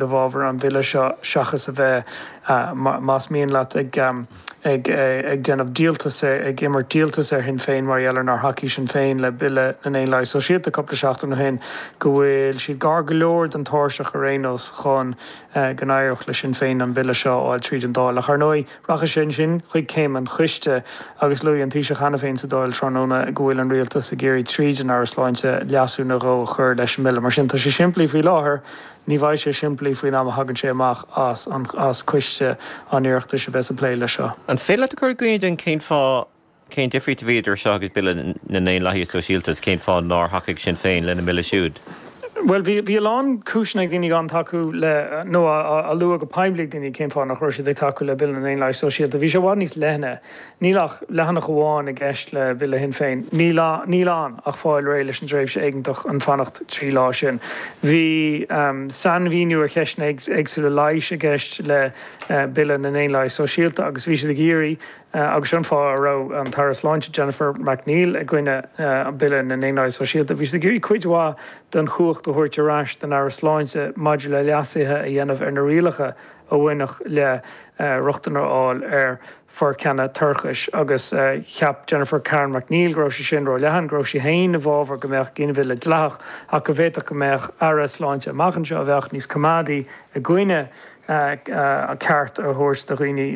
i bhfábhar an Bhille seo seachas a bheith, más mian leat, ag déanamh díoltas, ag imirt díoltais ar Shinn Féin mar gheall ar nár thacaigh Sinn Féin le Bille na nDaonlathaithe Sóisialta cúpla seachtain ó shin, go bhfuil siad gar go leor den táirseach ar aon nós chun go n-éireodh le Sinn Féin an Bille seo a fháil tríd an Dáil. Ach ar ndóigh, rachaidh sé ansin chuig Céim an Choiste agus luaigh an Taoiseach cheana féin sa Dáil tráthnóna go bhfuil an Rialtas ag iarraidh tríd an Aire Sláinte leasú nó dhó a chur leis an mBille. Mar sin, tá sé simplí faoi láthair. Ní bheidh sé simplí faoin am a thagann sé amach as an as Coiste an Oireachtais a bheas ag plé leis seo. An féidir leat a chur i gcuimhne dúinn cén fáth, cén difríocht a bhí idir seo agus Bille na nDaonlathaithe Sóisialta is cén fáth nár thacaigh Sinn Féin lena mBille siúd? Bhuel, bhí, bhí a lán cúiseanna ag daoine gan tacú le, nó a lua go poiblí ag daoine cén fáth nach raibh siad ag tacú le Bille na nDaonlathaithe Sóisialta. Bhí sé i bhfad níos leithne Níl ach leathanach amháin i gceist le Bille Shinn Féin. Níl ann ach fáil réidh leis an dtréimhse éigeantach, an fanacht trí lá sin. Bhí sainmhíniú ar cheisteanna éagsúla leighis i gceist le Bille na nDaonlathaithe Sóisialta agus bhí siad ag iarraidh, agus seo an fáth a raibh an tAire Sláinte, Jennifer MacNeill, i gcoinne Bille na nDaonlathaithe Sóisialta, bhí siad ag iarraidh cuid mhaith den chumhacht a thabhairt ar ais don Aire Sláinte maidir le leasuithe a dhéanamh ar na rialacha a bhainfeadh le rochtain a fháil ar fhoirceannadh toirchis agus cheap Jennifer Carroll MacNeill go raibh sé sin róleathan, go raibh sí féin i bhfábhar go mbeadh ginmhilleadh dleathach ach go bhféadfadh go mbeadh aire sláinte amach anseo a bheadh níos coimeádaí i gcoinne ceart a thabhairt do dhaoine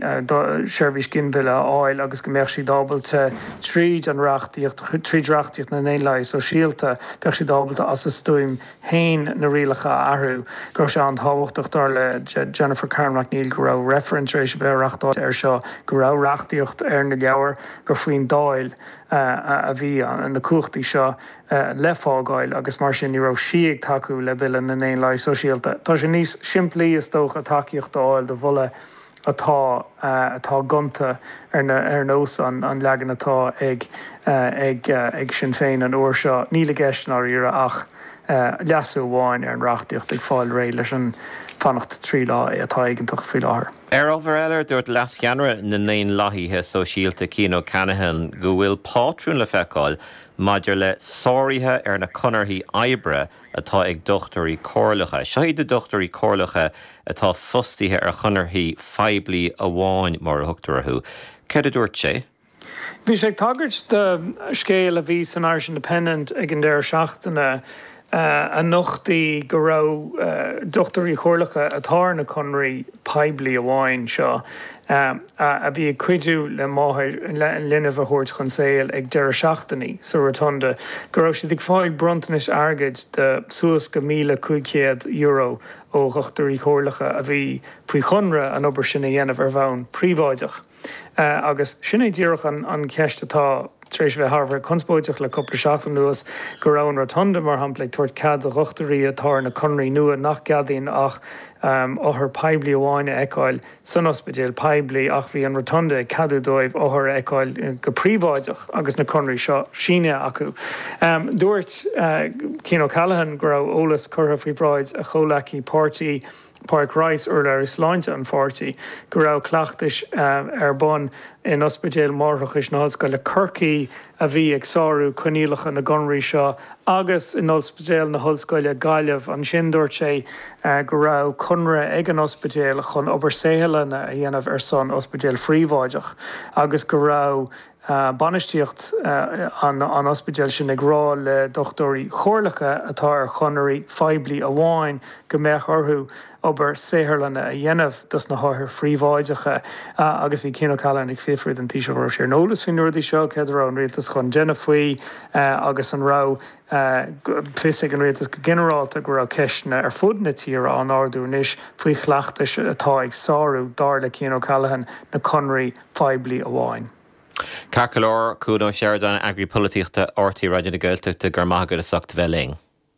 seirbhís ghinmhillte a fháil agus go mbeadh siad ábalta tríd an reachtaíocht, tríd reachtaíocht na nDaonlathaithe Sóisialta, bheadh siad ábalta as a stuaim féin na rialacha a athrú, go raibh sé an-tábhachtach, dar le Jennifer Carroll MacNeill, go raibh reifreann tar éis a bheith reachtáilte air seo, go raibh reachtaíocht ar na leabhair, gur faoin Dáil a bhí na cumhachtaí seo le fágáil agus mar sin ní raibh sí ag tacú le Bille na nDaonlathaithe Sóisialta. Tá sé níos simplí, is dócha, tacaíocht a fháil do mholadh atá atá gonta ar ar nós an an leagan atá ag ag ag Sinn Féin an uair seo. Níl i gceist, i ndáiríre, ach leasú amháin ar an reachtaíocht ag fáil réidh leis an fanacht trí lá atá éigeantach faoi láthair. Ar ábhar eile, dúirt leascheannaire na nDaonlathaithe Sóisialta Cian O'Callaghan go bhfuil pátrún le feiceáil maidir le sáruithe ar na conarthaí oibre atá ag dochtúirí comhairleacha. Seo iad na dochtúirí comhairleacha atá fostaithe ar chonarthaí poiblí amháin, mar a thugtar orthu. Céard a dúirt sé? Bhí sé ag tagairt do scéal a bhí san Irish Independent ag an deireadh seachtaine a nochtaigh go raibh dochtúirí comhairleacha atá ar na conraí poiblí amháin seo, a bhí ag cuidiú le máthair an linbh a thabhairt chun saoil ag deireadh seachtainí sa Rotunda, go raibh siad ag fáil bronntanais airgid de suas go €1,500 ó dhochtúirí chomhairleacha a bhí faoi chonradh an obair sin a dhéanamh ar bhonn príobháideach. Agus sin é díreach an cheist atá tar éis a bheith thar a bheith conspóideach le cúpla seachtain anuas, go raibh an Rotunda, mar shampla, ag tabhairt cead do dhochtúirí atá ar na conraí nua nach gceadaíonn ach othair poiblí amháin a fheiceáil, san ospidéal poiblí ach bhí an Rotunda ag ceadú dóibh othair a fheiceáil go príobháideach agus na conraí seo sínithe acu. Dúirt Cian O'Callaghan go raibh eolas curtha faoi bhráid a chomhleacaí páirtí Pádraig Rice, urlabhraí sláinte an pháirtí, go raibh cleachtais ar bun in Ospidéal Máithreachais na hOllscoile Corcaí, a bhí ag sárú coinníollacha na gconraí seo agus in Ospidéal na hOllscoile, Gaillimh. Ansin dúirt sé go raibh conradh ag an Ospidéal chun obair saotharlainne a dhéanamh ar son ospidéal phríobháideach agus go raibh bainistíocht an ospidéil sin ag rá le dochtúirí chomhairleacha atá ar chonraí phoiblí amháin go mbeadh orthu obair saotharlainne a dhéanamh dos na hothair phríobháideacha agus bhí Cian O'Callaghan ag fiafraí den Taoiseach an raibh sé ar an eolas faoi na rudaí seo, céard a raibh an Rialtas chun déanamh faoi agus an raibh fios ag an Rialtas go ginearálta go raibh ceisteanna ar fud na tíre á n-ardú anois faoi chleachtais atá ag sárú, dar le Cian O'Callaghan, na conraí phoiblí amháin. Ceart go leor, Cuan Ó Seireadáin, Eagraí Polaitíochta, RTÉ Raidió na Gaeltachta, go raibh maith agat as ucht bheith linn.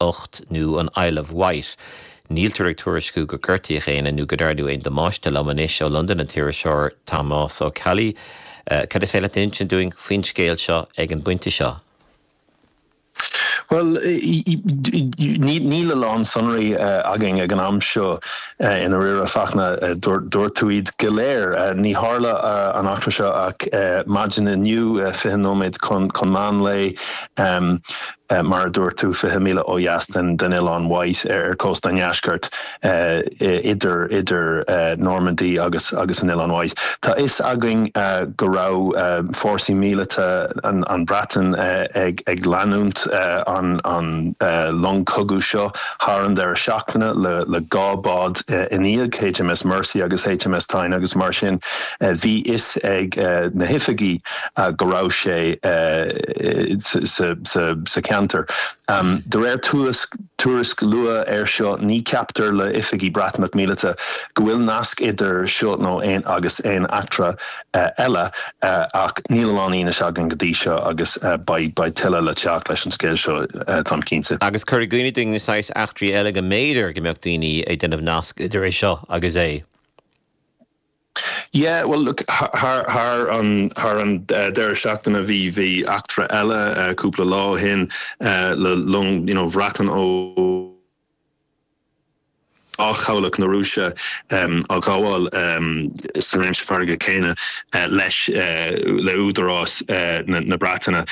8 nó an Isle of Wight. Níltear ag tuairisciú go gortaíodh éinne nó go ndearnadh aon damáiste Liom anois. Ó Londain an t-iriseoir Tomás Ó Ceallaigh. Cad is féidir leat a insint dúinn faoin scéal seo ag an bpointe seo? Bhuel, níl a lán sonraí againn ag an am seo i ndáiríre Fachtna. Dúirt tú iad go léir. Ní tharla an eachtra seo ach maidin inniu, fiche nóiméad chun meán lae. é, mar a dúirt tú, fiche míle ó dheas den den oileán Wight ar chósta an dheiscirt idir idir Normandie agus agus an oileán Wight. Tá fhios againn go raibh fórsaí míleata an an Bhreatain ag ag leanúint an an long cogadh seo thar an deireadh seachtaine le le dhá bád i ndiaidh HMS Mersey agus HMS Tyne agus mar sin bhí fhios ag na hoifigí go raibh sé sa cheantar. De réir tuairisc luath air seo, ní ceaptar le oifigí Breatnach míleata go bhfuil nasc idir seo nó agus aon eachtra eile ach níl a lán fianaise againn go dtí seo agus beidh tuilleadh le teacht leis an scéal seo táim cinnte. Agus cuir i gcuimhne dúinn na saghas eachtraí eile go mb'fhéidir go mbeadh daoine ag déanamh nasc idir é seo agus é. Yeah, bhuel, look, thar an deireadh seachtaine bhí eachtra eile cúpla lá ó shin le long, you know, Breatain ó scáthchabhlach na Rúise á ghabháil sa réimse farraige céanna leis, le húdaráis na Breataine.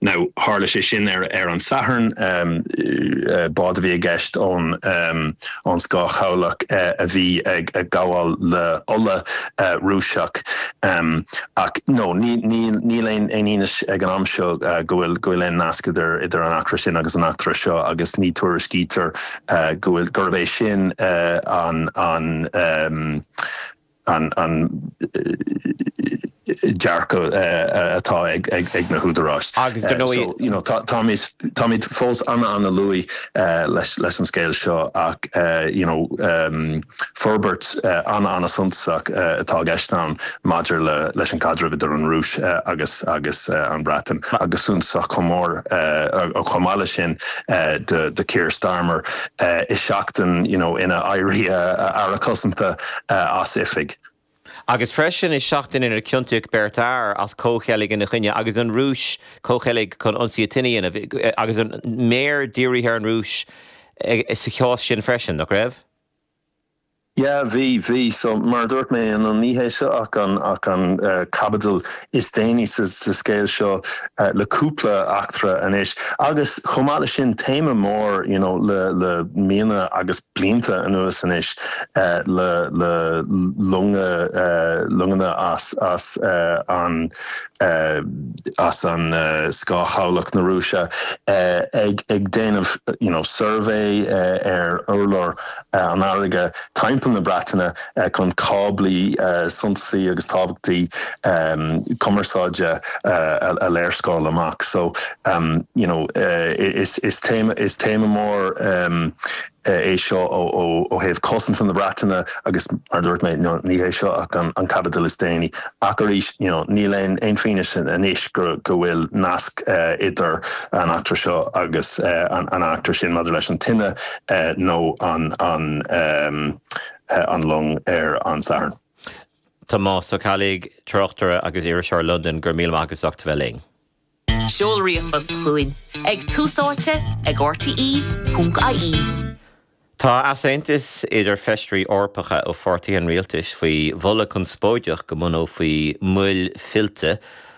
Now, tharla sé sin ar an Satharn, bád a bhí i gceist ón, ón scáthchabhlach a bhí ag gabháil le ola Rúiseach ach you know, níl aon fhianaise ag an am seo go bhfuil aon nasc idir an eachtra sin agus an eachtra seo agus ní tuairiscítear gurb é sin an an dearcadh atá ag na húdaráis. Agus ar ndóigh. Táimid fós an-ana luath leis an scéal seo ach forbairt an-ana suntasach atá i gceist ann maidir leis an gcaidreamh idir an Rúis agus an Bhreatain agus suntasach chomh maith chomh maith leis sin do Keir Starmer i seachtain inar éirigh a aire cosanta. as oifig. Agus freisin, i seachtain inar ciontaíodh beirt fhear as comhcheilg ina choinne, agus an Rúis, comhcheilg chun ionsaithe tine a dhéanamh, agus an méar dírithe ar an Rúis sa chás sin freisin, nach raibh? Yeah, bhí, bhí. So, mar a dúirt mé, you know, ní hé seo ach an caibidil is déanaí sa scéal seo le cúpla eachtra anois agus chomh maith le sin téama mór you know le le míonna agus blianta anuas anois le le longa longanna as as an as an scáthchabhlach na Rúise ag ag déanamh you know survey ar urlár na farraige timpeall na Breataine chun cáblaí suntasacha agus tábhachtacha cumarsáide a léarscáil amach. So you know is téama is téama mór é seo ó thaobh cosanta na Breataine agus mar a dúirt mé you know ní hé seo ach an caibidil is déanaí. Ach arís you know níl aon aon fianaise anois go go bhfuil nasc idir an eachtra seo agus an eachtra sin maidir leis an tine nó an long ar an Satharn. Tomás Ó Ceallaigh, Tráchtaire agus Iriseoir, Londain, Go raibh míle maith agat as ucht a bheith linn. Seol ríomhphost chugainn ag Tús Áite ag RTÉ.ie. Tá easaontas idir feisirí Eorpacha ó pháirtithe an rialtais faoi mholadh conspóideach go mbunófaí moil fillte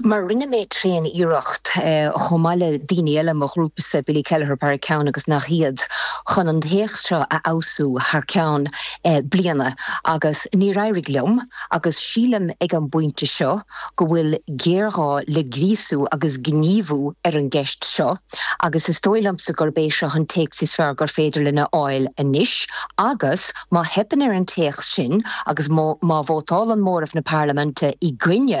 Mar a rinne mé tréan iarracht, chomh maith le daoine eile mo ghrúpasa, Billy Kelleher Barry Cowen agus mar iad, chun an téacs seo a fheabhsú thar ceann bliana agus níor éirigh liom agus sílim ag an bpointe seo go bhfuil géarghá le gríosú agus gníomhú ar an gceist seo agus is dóigh liomsa gurb é seo an téacs is fearr gur féidir linn a fháil anois agus Má theipeann ar an téacs sin agus má vótálann móramh na Parlaiminte i gcoinne